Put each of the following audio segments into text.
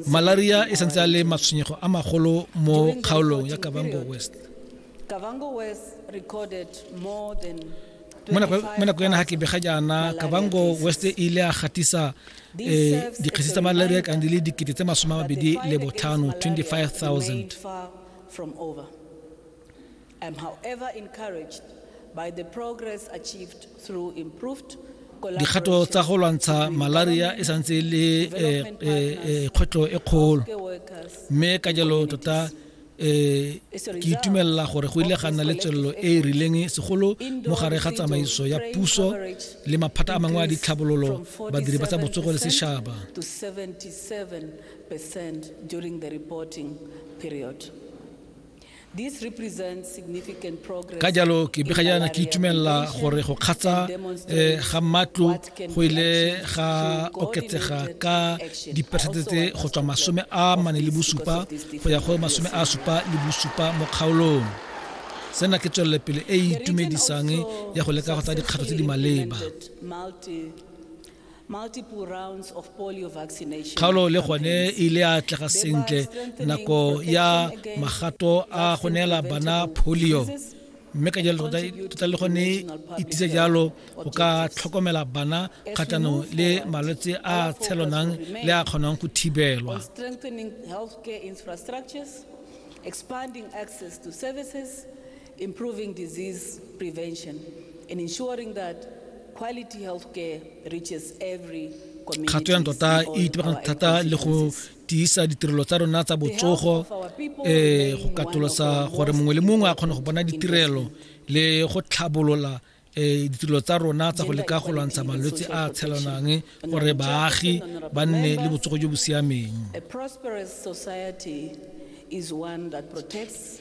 malaria e santse a le matshwenyego a magolo mo kgaolong ya kavango west mo nako ya naga ke bega jaana kabango west e ile a gatisa um eh, dikgesi tsa malaria kang di le dikete tse masome a mabedi le botlhano 25000 I am however encouraged by the progress achieved through improved dikgato tsa go lwantsha malaria e santse e le eh, eh, eh, kgwetlho e kgolo mme ka jalo tota um ke itumelela gore go ile ga nna le tswelelo e e rileng segolo mo gare ga tsamaiso ya puso le maphata a mangwe a ditlhabololo badiri ba tsa botsogo le setšhaba ka jalo ke begajana ke itumelela gore go kgatsa eh, ga matlo go ile ga oketsega ka diperesente tse go tswa masome a mane le bosupa go ya go masome a supa le bosupa mo kgaolong sena ke tswelelepele e e itumedisang ya go leka go tsa dikgato tse di maleba Kgaolo le gone e ile ya atlega sentle nako ya magato a go neela bana polio mme ka jalo tota le gone e tisa jalo go ka tlhokomela bana kgatlhanong le malwetse a tshelonang le a kgonang go thibelwa expanding access to services improving disease prevention and ensuring that quality healthcare reaches every kgato ya ntota e itebegang thata le go tiisa ditirelo tsa rona tsa botsogo um go katolosa gore mongwe le mongwe a kgone go bona ditirelo le go tlhabolola um ditirelo tsa rona tsa go leka go lwantsha malwetse a tshelanang gore baagi ba nne le botsogo jo bo siameng is one that protects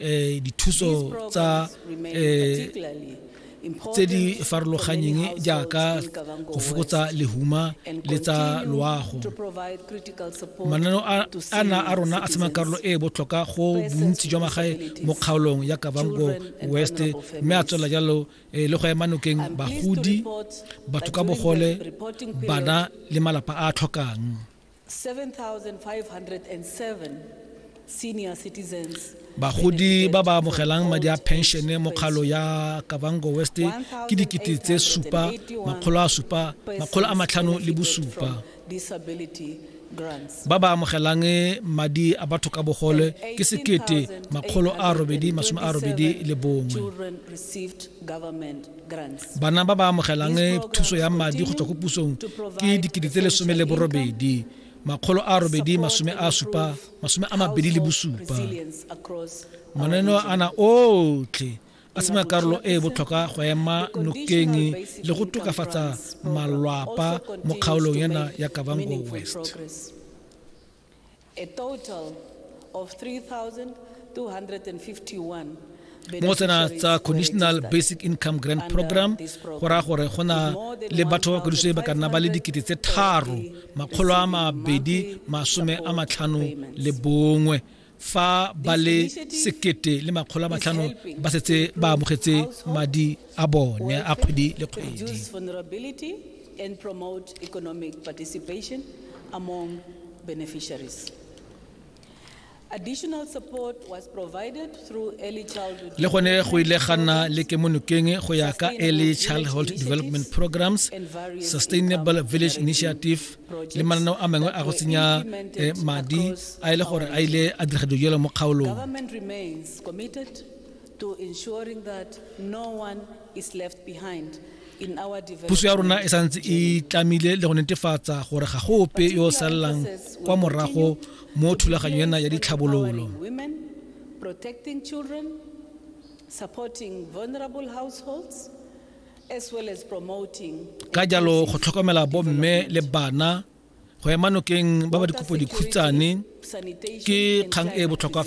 eh, dithuso tsa eh, tse di farologanyeng jaaka go fokotsa lehuma le tsa loago mananeo a na a rona a sema karolo e e botlhokwa go bontsi jwa magae mo kgaolong ya kavango west mme a tswela jalo eh, le go ema nokeng bagodi batho ka bogole bana le malapa a a tlhokang bagodi ba ba amogelang madi a penšene mo kgalo ya kabango west ke dikete tse supa makgolo a supa makgolo a matlhano le bosupa ba ba amogelang madi a batho ka bogole ke sekete makgolo a robedi masome a robedi le bongwe Bana ba ba amogelang thuso ya madi go tswa ko pusong ke dikete tse lesome le borobedi makgolo a robedi masome a supa masome a mabedi le bosupa mananeo ana otlhe a sena karolo e e botlhokwa go ema nokeng le go tokafatsa malwapa mo kgaolong ena ya kavango west mo tsena tsa conditional basic income grant program go raya gore go na le batho ba kwadiso e ba ka nna ba le dikete tse tharo makgolo a mabedi masome a matlhano le bongwe fa ba le sekete le makgolo a matlhano ba setse ba amogetse madi a bone a kgwedi le kgwedi and promote economic participation among beneficiaries. Additional support was provided through early childhood le gone go ile ga nna le kemonokeng go ya ka early childhood development programs sustainable village initiative le mananeo a mangwe a go tsenya eh, madi a e le gore a ile a dira dilo jalo mo kgaolong puso ya rona e santse e tlamile le go netefatsa gore ga go ope yo o salelang kwa morago mo thulaganyo ena ya ditlhabololo protecting children, supporting vulnerable households, ka jalo go tlhokomela bomme le bana go ema nokeng ba ba dikopo dikhutshane ke kgang e e botlhokwa fela